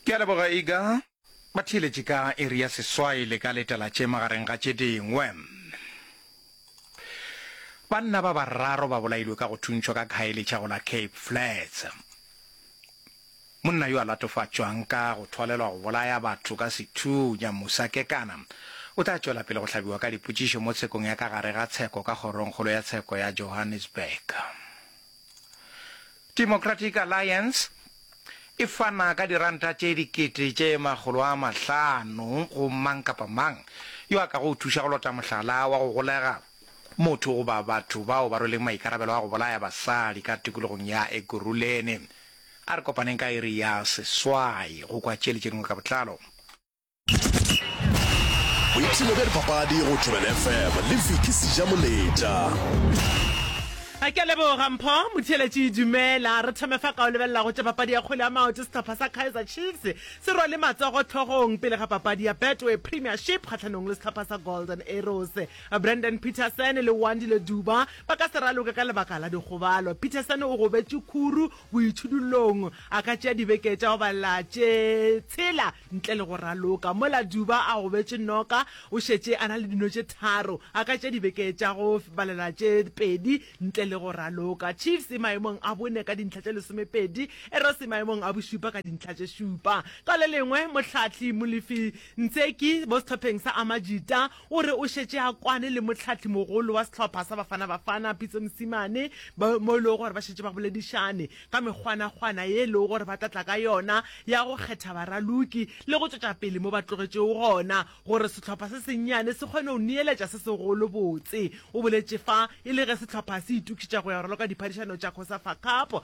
Ke a leboga Iga. Ba theeletše ka iri ya seswai le ka letela tše magareng ga tše dingwe. Banna ba bararo ba bolailwe ka go thuntšhwa ka Khayelitsha go la Cape Flats. Monna yo a latofatšwang ka go thwalelwa go bolaya batho ka sethunya Musa Kekana o tla tšwela pele go hlabiwa ka dipotšišo mo tshekong ya ka gare ga tsheko ka kgorongkgolo ya tsheko ya Johannesburg. Democratic Alliance e fana ka diranta tše dikete tše makgolo a mahlano go mang kapa mang yo a ka go thuša go lota mohlala wa go golega motho goba batho bao ba rweleng maikarabelo a go bolaya basadi ka tikologong ya Ekurhuleni. A re kopaneng ka iri ya seswai go kwa tše le tše dingwe ka botlalo. boipshino bja dipapadi go tobel fm le viki seja moletša a ke leboga mpho motheletši dumela re thome fa ka o lebelela go tša papadi ya kgole ya maoto setlhopha sa kaizer chiefs se rwale matsogo tlhogong pele ga papadi ya betway premiership kgatlhanong le setlhopha sa golden arrows brandon peterson le wandile duba ba ka se raloke ka lebaka la dikgobalo peterson o gobetše khuru Boitšhidullong, a ka tšea dibeke tša go balela tše tshela ntle le go raloka. Mola Duba a gobetše noka, o šetše a na le dino tše tharo. A ka tšea dibeke tša go balela tše pedi ntle le go raloka. Chiefs e maemong a bone ka dintlha tše lesomepedi, Arrows e maemong a bošupa ka dintlha tše šupa. Ka le lengwe, mohlahli Molefi Ntseki mo sehlopheng sa Amajita O re o šetše a kwane le mohlahlimogolo wa sehlopha sa Bafana Bafana, Pitso Mosimane, bao mo e lego gore ba šetše ba boledišane ka mekgwanakgwana ye e lego gore ba tla tla ka yona ya go kgetha baraloki le go tšwetša pele mo ba tlogetšego gona gore sehlopha se sennyane se kgone go neeletša se segolo. Botse o boletše fa e le ge sehlopha se itokišetša go ya go raloka diphadišano tša Cosafa Cup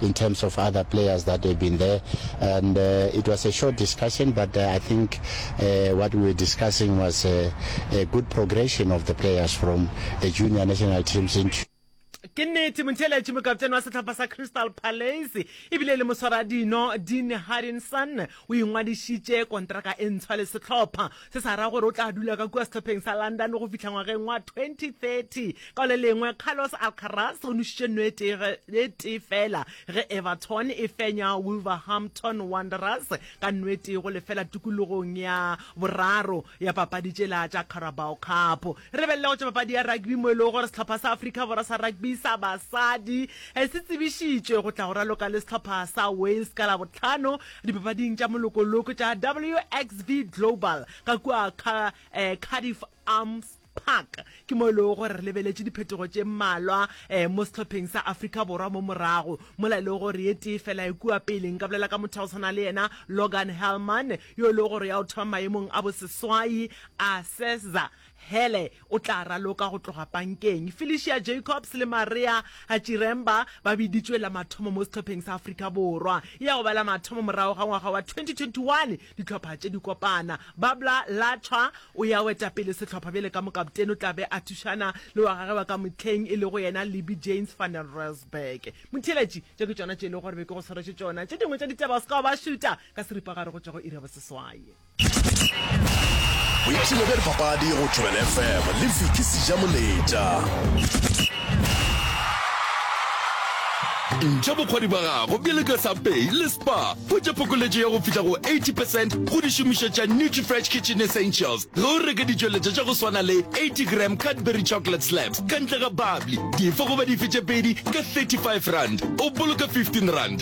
in terms of other players that have been there and uh, it was a short discussion but uh, I think uh, what we were discussing was a, uh, a good progression of the players from the junior national teams into ke nnete montheeletše mokaptene wa setlhapa sa crystal palace ebile e le moswara dino dean harrinson o ingwadišitše kontraka e ntshwa le setlhopha Se sa ra gore o tla dula ka kua sehlopheng sa London go fihla ngwageng wa 2030. Ka le lengwe, Carlos Alcaraz o nošitše nno e tee ge- e tee fela ge Everton e fenya Wolverhampton Wanderers ka nno e tee go lefela tikologong ya boraro ya papadi tšela tša Carabao Cup. Re be le go tšwa papadi ya rugby mo e lego gore sehlopha sa Afrika Borwa sa rugby sa basadi se tsebišitšwe go tla go raloka le sehlopha sa Wales ka Labohlano dipapading tša molokoloko tša WXV Global ka kua Cardiff Arms Park ke mo e lego gore re lebeletše diphetogo tše mmalwa mo sehlopheng sa Afrika Borwa mo morago mola e lego gore ye tee fela e kua pele nka bolela ka motho wa go tshwana le yena Logan Hellman yo e lego gore ya o thoma maemong a boseswai, a seza, Hele o tla raloka go tloga pankeng. Felicia Jacobs le Maria Chiremba ba biditšwe la mathomo mo sehlopheng sa Afrika Borwa. E ya go ba la mathomo morago ga ngwaga wa 2021 dihlopha tše di kopana. Babla Latswa o ya go eta pele sehlopha bjale ka mokaptene, o tla be a thušana le wa gagwe wa ka mohleng e lego yena Libby Jaynes van den Rensburg. Motheeletši, tše ke tšona tše e lego gore be ke go swaretše tšona, tše dingwe tša ditaba o se ka wa ba šuta. Ka seripagare go tšwa go iri ya boseswai. Boipshino bja dipapadi go Thobela FM le Vicky Sijamoletša. Ntšha bokgwadi ba gago bjale ka sa Pay le Spar. Hwetša phokoletšo ya go fihla go 80 percent go dišomišwa tša Nutrifresh Kitchen Essentials ge o reka ditšweletšwa tša go swana le 80 gram Cadbury Chocolate Slabs ka ntle ga bubbly, dife goba dife tše pedi ka 35 rand, o boloka 15 rand.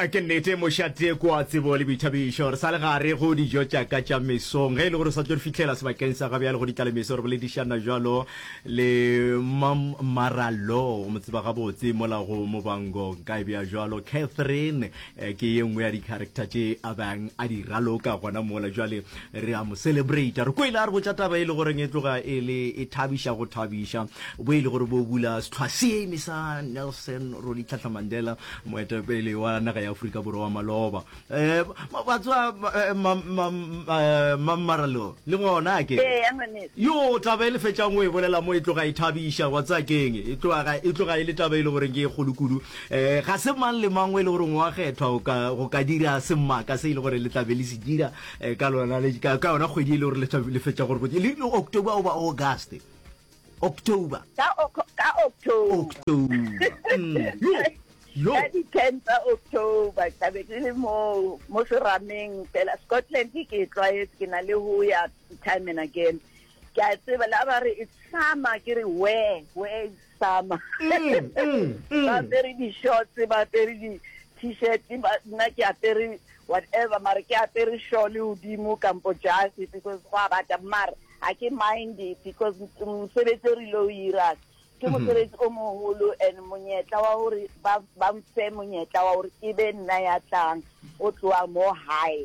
A Ke nnete, mošate ke wa tsebo le boithabišo. Re sa le gare go dijo tša ka tša mesong. Ge e le gore o sa tlo re fihlela sebakeng sa ga bjale go di tlala meso, re boledišana bjalo le Mam Marallo, o mo tseba gabotse mola go Mobango. Nka e bea bjalo, Catherine eh, ke ye nngwe ya di-character tše a bang a di raloka gona mola. Bjale Re a mo celebrata. Re kwele a re botša taba e le goreng e tloga e le e thabiša go thabiša, bo e le gore bo bula sehlwa seme sa Nelson Rolihlahla Mandela, moetapele wa naga ya Afrika Borwa wa maloba. Um, wa tseba, Mammaralo, le gona a ke re. Eya, ngwaneso. Yoo, taba e le fetšang o e bolela mo e tloga e thabiša, wa tseba ke'ng? E tloga, e tloga e le taba e le goreng ke e kgolo kudu. Um, ga se mang le mang o e le goreng o a kgethwa go ka, go ka dira semaka se e le gore le tla be le se dira, Eh, ka lona le ka ka yona kgwedi e le gore le tla- le fetša gore botse- le le october oba august october ka Oc- ka october october Mm, yo yo ka di-ten tsa october ke tlabe ke le mo mo serameng fela scotland ke e tlwaetse ke na le ho ya time and again ke a tseba la ba re it's summer ke re where where is hlama ba apere di-shorts ba apere di-t-shirt nna ke apere whatever mare ke apere sure le godimo kampo jase because go a bata mare ga ke mind because mosebetsi o rile o irang ke mhm. mosebetsi o mogolo and monyetla wa gore ba mfe monyetla wa gore ke be nna ya tlang o tloa mo high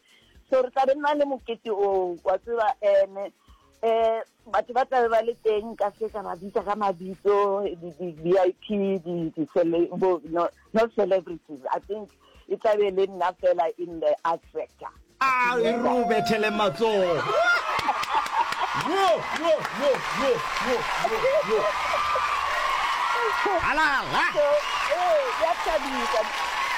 so re tla be nna le mokete oo wa tseba um um batho ba tlabe ba le teng ka se ka ba bitsa ka mabitso di-v i p not celebrities i think e tlabe e le nna fela in the art sector a e re o bethele matlogo halala so, eh, ya thabisa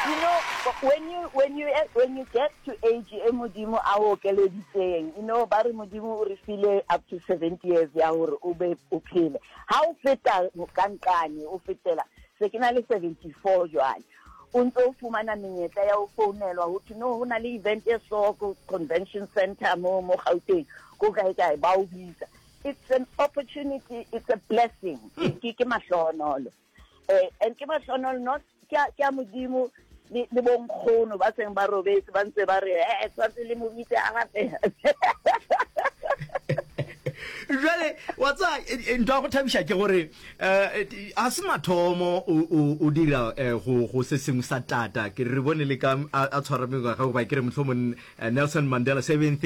you know when When you, when you get to age e Modimo a o okeleditseng, you know, ba re Modimo o re file up to 70 years ya gore o be o phele. Ha o feta ka nqane, o fetela, se ke na le 74 jwale. O ntse o fumana menyetla ya ho founelwa, ho thwe no ho na le event e so ko convention center mo mo Gauteng, ko kae kae, ba o bitsa. It's an opportunity, it's a blessing. Ke ke mahlohonolo. um and ke mahlonono not ke a modimo le bonkgono ba seng ba robetse ba ntse ba re e eh, eh, tshwanetse le mo bitse a gape jale wa tsa eh, ntwa go thabiša ke gore um a se mathomo o dira go se sengwe sa tata ke re bone le ka a tshwara mengwaga goba ke re motlhomong nelson mandela seventh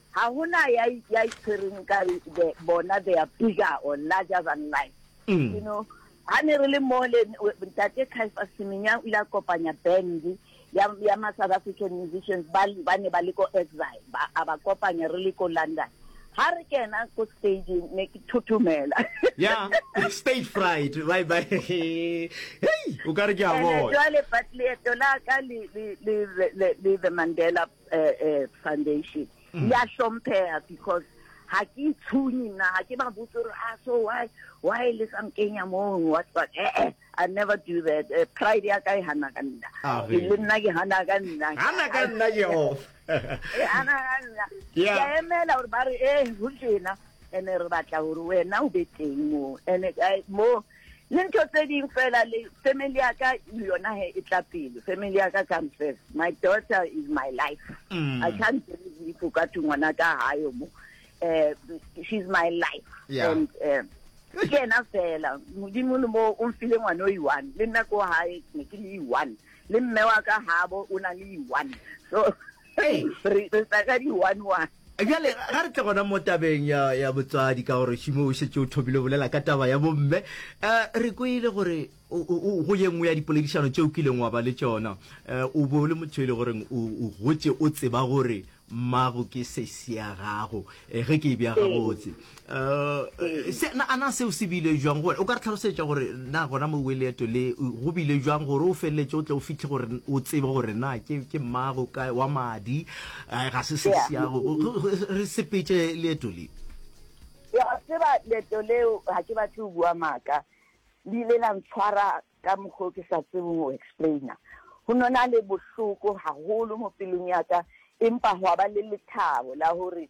Ga go na ya, ya e tshwereng nkare the, bona they are bigger or larger than life. You know, ga ne re le mole, Ntate Kaifa Semenya o ile a kopanya band ya, ya ma South African musicians ba, ba ne ba le ko exile, ba, a ba kopanya re le ko London. Ga re kena ko stageng, ne ke thothomela. Yeah, stage fright, bye bye. Hei, o ka re ke a And bona. jwale, but leeto la ka le, le, le, le, le, le the Mandela uh, uh, foundation mm. ya hlomphega because ga ke itshunye nna ga ke ba botse gore a ah, so why why le sa nkenya mong what what eh eh i never do that uh, pride ya ka e gana ka nna ah, e le nna ke gana ka nna gana ka nna jehova e gana ka nna ke emela gore ba re e go jena ene re batla gore wena o be teng mo ene mo le ntho tse ding fela le family ya ka le yona he e tla pele family ya ka come first my daughter is my life mm. i can't believe if ka thwe ngwana ka hayo mo eh, she's my life yeah. and um, ke ena fela modimo le mo o mfile ngwana o i-one le nna ko gae ne ke le i-one le mme wa ka gabo o na le i-one so Ee, re re tla ka di one one. Bjale ga re tle gona mo tabeng ya ya botswadi ka gore Šimo o šetše o thomile o bolela ka taba ya bomme. Eh, re kwele gore o- o- o- go ye nngwe ya dipoledišano tše o kileng wa ba le tšona, eh, o be o le motho e le goreng o o gotše o tseba gore mmago ke sesi ya gago, eh, ge ke e bea Ee. gabotse. Eh, se na ana seo se bile jwang gore o ka re tlhalosetsa gore na gona mo weleeto le go bile jwang gore o feleletse o tle o fitlhe gore o tsebe gore na ke ke mmago ka wa madi eh, ga se se siago re sepetse leeto le ya tseba leeto leo ga ke batle o bua maaka le ile la ntshwara ka mokgwa o ke sa tsebong o explaina go nona le bohloko gagolo mo pelong ya ka empa gwa ba le lethabo la gore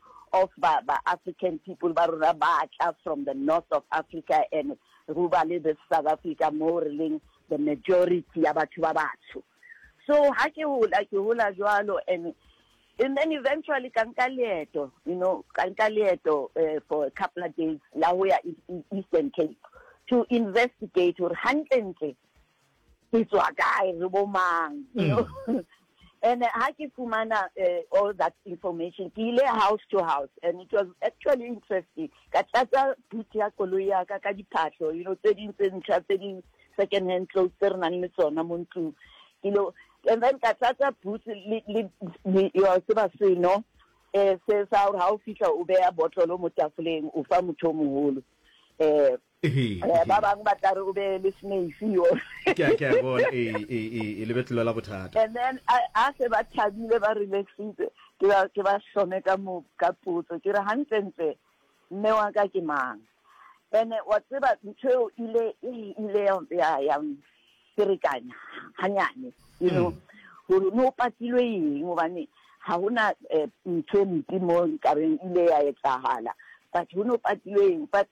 of ba ba African people ba rona ba tla from the north of Africa and go ba le this South Africa mo re leng the majority ya batho ba batsho so ha ke hola ke hola jwalo and and then eventually ka nka leeto you know ka nka leeto uh, for a couple of days la ho ya e-, e-, Eastern Cape to investigate or hantle ntle ke tswa kae re bo mang you know mm. and uh, ha ke fumana uh, all that information ke ile house to house and it was actually interesting ka tlatsa boot ya koloi ya ka ka diphatlho you know tse ding tse ntšha tse ding second hand clothes tse re nang le tsona mo ntlong ke lo and then ka tlatsa boot le yo se ba seno eh se sa gore ha o fihla o beya botlolo mo tafoleng o fa motho o moholo eh Ee, ba bangwe ba tla re o be le snake yo. Ke a ke a bona e e e e lebetlelo la bothata. And then a a se ba thabile ba relaxitse ke ba ke ba hlome ka mo ka potso ke re hantlentle mme wa ka ke mang. Ene wa tseba ntho eo ile e ile ya ya ferekanya hanyane you know gore no patilwe eng gobane ga gona eh, ntho e mpe mo nkareng ile ya etsahala but go no patilwe eng but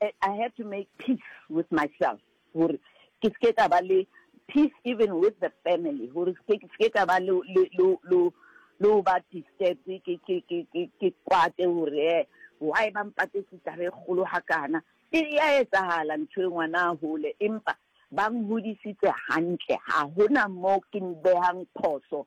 I had to make peace with myself gore ke se ke ka ba le peace even with the family gore se ke ka ba le le ba disturbed ke ke ke ke ke kwate gore eh, why ba mpatetse taba e kgolo ga kana e ya etsagala ntho e ngwana a gole empa ba ngodisitse gantle ga gona mo ke behang phoso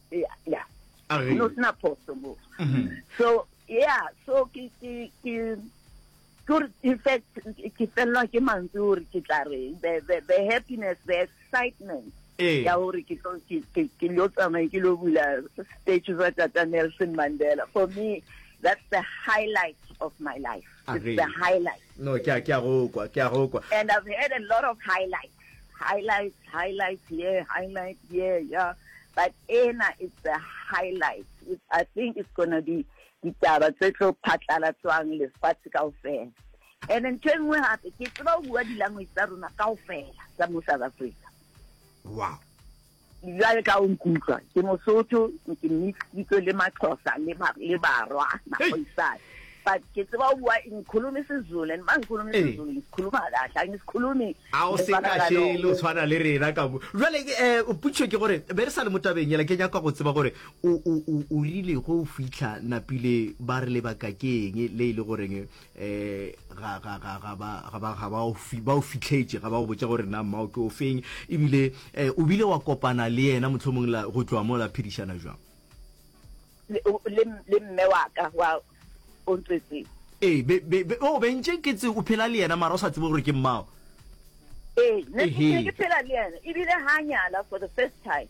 yeah yeah Age. no sna phoso mo Mhm. so yeah so ke ke ke Good, in fact, ke felelwa ke mantswe gore ke tla reng the, the, the happiness the excitement Ee. ya gore ke tlo- ke- ke- ke lo tsamaye ke lo bula statue sa tata nelson mandela for me that's the highlight of my life it's Agree. the highlight no ke a ke a go kwa ke a go kwa and i've had a lot of highlights Highlights, highlights, yeah, highlights, yeah, yeah. But ena is the highlight, which I think is going to be ditaba tse tlo phatlalatswang lefatshe kao fela. And then ntho e nngwe gape, ke tseba o bua di-language tsa rona kao fela tsa mo South Africa. Wow. Bjale ka o nkutlwa, ke Mosotho, ke mixeditswe le Maxhosa le ba le Barwa, Magoisane. But ke tseba o bua ngikhulumi isiZulu and mangikhulumi isiZulu ngisikhuluma kahle, angisikhulumi a o se ka šele o tshwana le rena ka mo jwale eh putšo ke gore be re sa le mo tabeng yela ke nyaka go tseba gore o o o o rile go fitlha napile ba re lebaka ke eng le ile goreng eh ga ga ga ga ba ga ba ga ba o fi ba o fitlhetse ga ba o botsa gore na mmao ke o feng ebile eh o bile wa kopana le yena motlhomong la go tloa mo la phedishana jwang le le mme wa ka wa o ntsetse eh be be o bentse ke tse o phela le yena mara o sa tsebe gore ke mmao eh ne ke phela le yena ebile ha nyala for the first time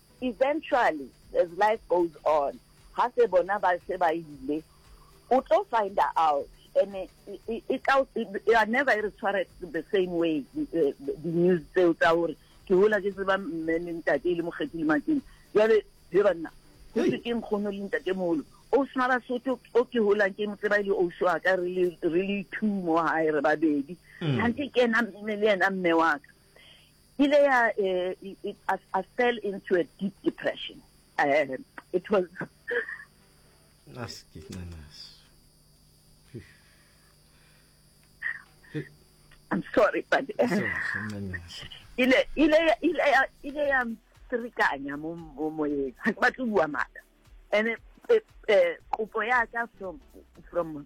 Eventually, as life goes on, ga se bona ba se ba ile, o tlo finder out, and e, e, e tla, e are never e re tshware the same way, eh, di-news tseo tsa gore ke hola ke tseba mme le ntate e le mokgethi le makeng jale he banna go se ke nkgono le ntate molo o sna basotho o ke holang ke mo tseba e le ouso wa ka re le two mo gae re babedi gante mm. ke ena mme le ena mme wa ka ile ya eh, it, it, I, I fell into a deep depression uh, it was aske ncanasi I'm sorry but uh, ncanasi ile ile ya- ile ya- ile ya mtsekanya mo mo moyeng ha ke batle ho bua maaka and eh, eh, kopo ya ka from from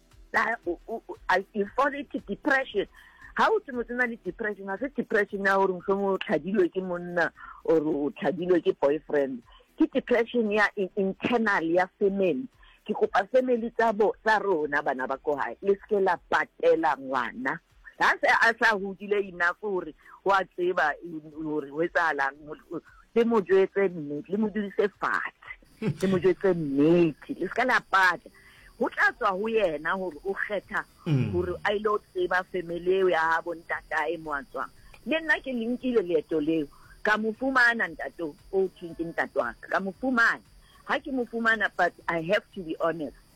na o o i fall into depression ha o tse motho na le depression ha se depression ya gore mohlomong o tlhadilwe ke monna or o tlhadilwe ke boyfriend ke depression ya internal ya family ke kopa family tsa bo tsa rona bana ba ko gae le seke la patela ngwana Ga se a sa hudile enough gore o a tseba gore go etsagalang. Le mo jetse nnete, le mo dudise fatshe, le mo jetse nnete, le seka la pata. Go tla tswa go yena gore o kgetha mm. gore a ile o tseba family eo ya gabo ntatae mo a tswang. Le nna ke lenkile leeto leo ka mo fumana ntate o thweng ke ntate wa ka ka mo fumana ga ke mo fumana but i have to be honest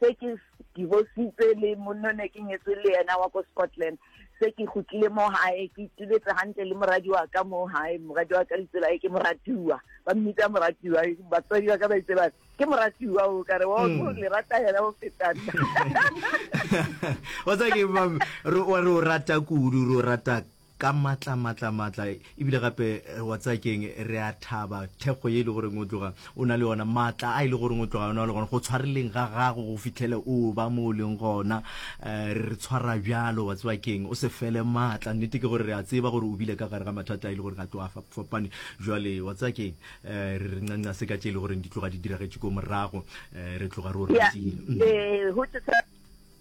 se ke divositse le monno ne ke nyetswe le yena wa ko scotland se ke gotlile mo gae ke ituletse gantle le moradi wa ka mo gae moradi wa ka litsela e ke moratiwa ba mmitsa moratiwa batswadi ba ka ba itse ba ke moratiwa o kare o hmm. le rata yena o fetang o tsa ke re o rata kudu re o rata ka matla matla matla ebile gape eh, wa tsaya keng re a thaba thekgo ye e le goreng o tloga o na le yona matla a e le goreng o tloga o na le gona go tshwareleng ga gago go fitlhele o ba mo o leng gona um re re tshwara bjalo wa tseba keng o se fele matla nnete ke gore re a tseba gore o bile ka gare ga mathata a e le gore ga tlo a fa- fapane jwale wa tsaya keng um re re ncanca se ka tše e le goreng di tloga di diragetše ko morago um re tloga re o Yeah. ratile Mm. Eh, ho tšesa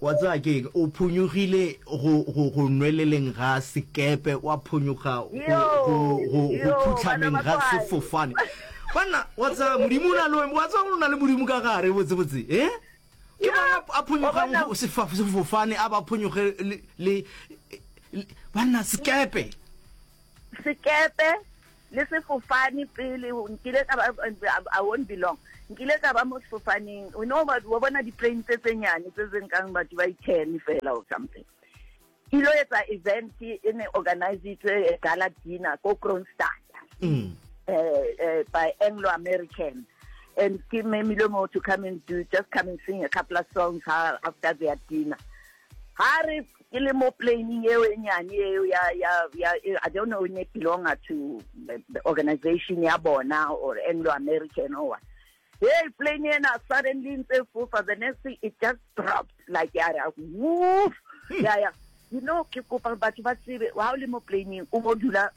Wa tseba ke eng? O phonyogile go, go, go nweleleng ga sekepe, wa phonyoga go, go, go, go phutlhameng ga sefofane. Banna, wa tseba Modimo o na le wena, wa tseba gore o na le Modimo ka gare, botsebotse, eh? Ke mang a, a phonyogang go sefa, sefofane, a ba phonyoge le, le, le banna, sekepe. Sekepe, le sefofane pele nkile ka ba I won't be long nkile ka ba mo sefofaneng you know wa bona di-plane tse tse nyane tse tse nkang batho ba i-ten fela or something ke ilo etsa event e ne organisitswe gala dinner ko Kroonstad um by Anglo American and ke memile mo to come and do just come and sing a couple of songs after their dinner ga re ke le mo planing eo e nyane eo ya ya ya i don't know ne belonga to the organization ya bona or anglo american or what hey plane ena suddenly ntse fofa the next thing it just dropped like ya ra woof ya ya you know ke kopa batho ba tsebe ha o le mo planeng o bo dula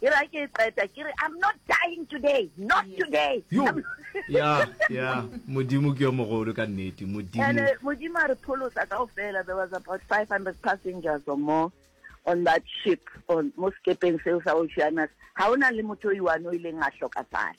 e ra ke e qeta ke re i'm not dying today not today yo ya ya modimo ke yo mogolo ka nnete modimo and uh, modimo a re pholosa ka ofela there was about 500 passengers or more on that ship on mo sekepeng seo sa oceanus ga o na le motho o iwane o ileng a hlokafala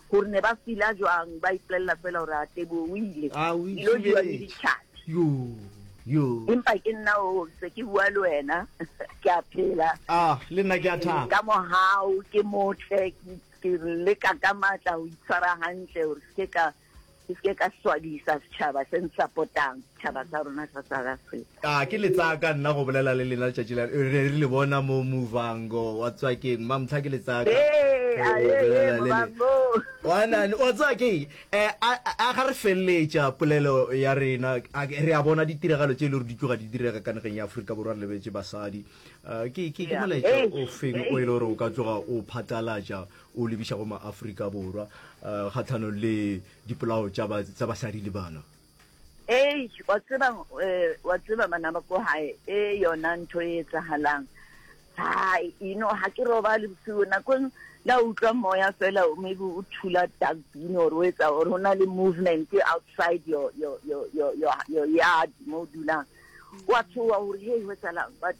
Gore ne ba fila jwang, ba ipolelela fela gore a Teboho o ile, A o dilo jewa le itšhibeletše. ditšhabi. Yoo, yoo. Empa ke nna oo, ke se ke bua le wena, ke a phela. Ah, le nna ke a thaba. Ka mohau, ke motle, ke, ke leka ka matla go itshwara gantle gore se ke ka Ke se ke ka swabisa setšhaba se nsapotang, setšhaba sa rona sa South Africa. Ka ke le tsaya ka nna go bolela le lena letšatši la re ne re le bona mo Muvhango wa Tswakeng. Mma Mtlha ke le tsaya ka Ee, go a, ee, ee, bolela le le. Muvhango. Wanane, wa tsaya ke eng? Eh, a, a ga re feleletša polelo ya rena, a ke- re a bona ditiragalo tše e le gore di tloga di direga ka nageng ya Afrika Borwa, re lebetše basadi. Eh, ke, ke, ke Yeah. molaetša Eish, o feng o e eish. le gore o ka tloga o phatlalatša o lebiša go maafrika borwa um kgatlhanong le dipolao tsa basadi le bana ee wa tseba eh, wa tseba bana ba ko gae e yona ntho e etsagalang ha ino ha ke roba le bosigo nakong la utlwa moya fela maybe o thula dustbin or o etsa or go na le movement outside your, your, your, your, your, your yard mo o dulang wa tshowa gore hey go etsalang but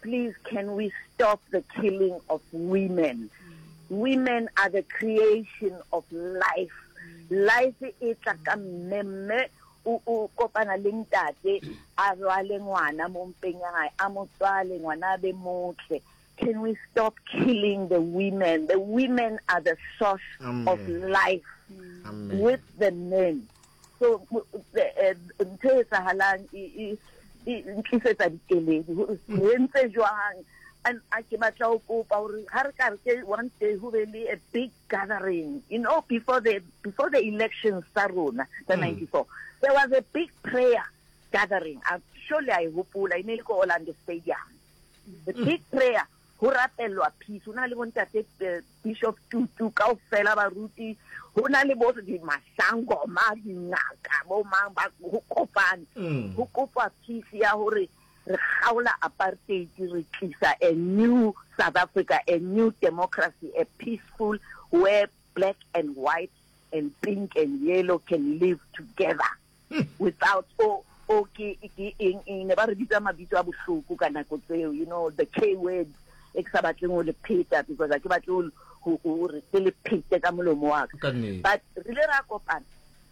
Please can we stop the killing of women? Women are the creation of life. Life e tla ka mme mme o kopana le ntate a rwale ngwana mo mpeng ya gae a mo tswale ngwana a be motle can we stop killing the women the women are the source Amen. of life Amen. with the men so ntho e etsahalang e, e, e ntlisetsa dikeledi gore re ntse jwang and a ke batla go kopa gore ga re ka re ke one day go be le a big gathering you know before the before the elections tsa rona tsa mm. ninety four there was a big prayer gathering surely i hopola e ne e le ko orlando stadium the mm. big prayer Ho rapellwa peace. Ho na le bo Ntate Bishop Tutu, kaofela baruti, ho na le bo di masangoma, dingaka, bo mang ba ho kopane. Mm. Ho kopwa peace ya hore re kgaola apartheid re tlisa a new South Africa, a new democracy, a peaceful where black and white and pink and yellow can live together. without o o ke ke eng eng ne ba re bitsa mabitso a bohloko ka nako tseo you know the k word e ke sa batleng go le pheta because a ke batle gore ke le phete ka molomo wa ka but re le ra kopana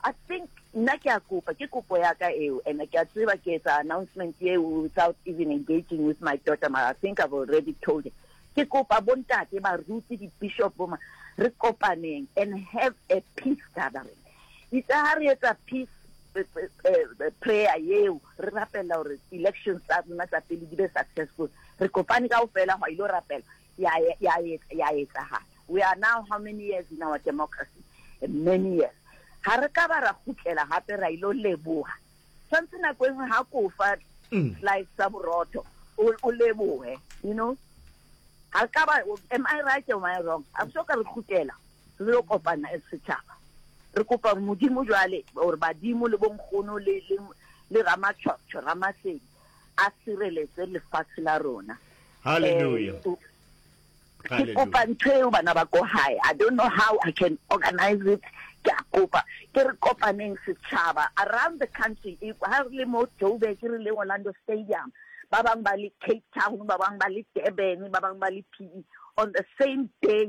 i think nna ke a kopa ke kopo ya ka eo and ke a tseba ke etsa announcement eo without even engaging with my daughter ma i think i've already told her ke kopa bontate baruti di-bishop boma re kopaneng and have a peace gathering Itse ha re etsa peace eh, eh, eh, prayer yeo re rapela gore elections tsa rona tsa pele di be successful re kopane ka ofela go ile rapela ya etsagala we are now how many years in our democracy many years ga re ka ba ra gutlela gape ra ile leboga tshwanetse nako e nngwe ga kofa mm. slice sa borotho o leboge you know ga re ka ba am i right am i wrong a so ka re gutlela re yo kopana as setšhaba re kopa gore modimo jwale or badimo le bonkgono le le le ramatšhwatsho ramasedi a sireletse lefatshe la rona Hallelujah. Eh, o- ke Hallelujah. kopa ntho eo bana ba ko gae i don't know how i can organize it ke a kopa ke re kopaneng setšhaba around the country e- ha re le mo joburg re le orlando stadium ba bangwe ba le cape town ba bangwe ba le durban ba bangwe ba le p E, on the same day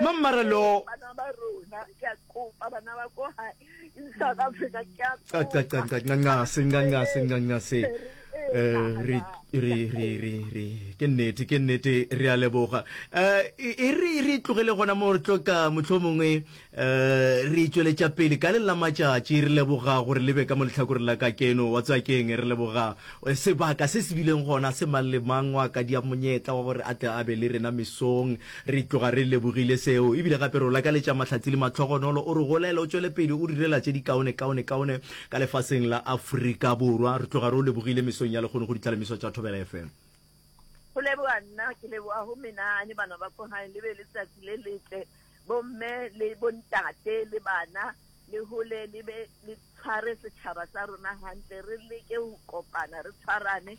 Mammara lo. Bana ba rona ke a kopa bana ba ko ha in South Africa ke a kopa. Qa qa qa qa qa se qa qa se qa qa se. Eh re re re re re ke nnete ke nnete re a leboga. Eh e re re tlogele gona mo re tlo ka mohlomongwe eh re itšweletša pele ka le la matšatši re leboga gore le be ka mo lehlakore la ka keno wa tsakeng re leboga sebaka se se bileng gona se mang le mang wa ka dia monyetla wa gore a tle a be le rena mesong Re tloga re lebogile seo, ebile gape re o lakaletša mahlatse le matlhogonolo. O re golele, o tšwele pele o direla tše dikaone, kaone, kaone ka lefaseng la Afrika Borwa. Re tloga re o lebogile mesong ya lekgono go ditlhalemiswa tša Thobela FM. Go leboga nna ke leboga go menagane bana ba ko gae le be le tsatsi le letle bo mme le bo ntate le bana le hole le be le tshware setšhaba sa rona gantle re leke go kopana re tshwarane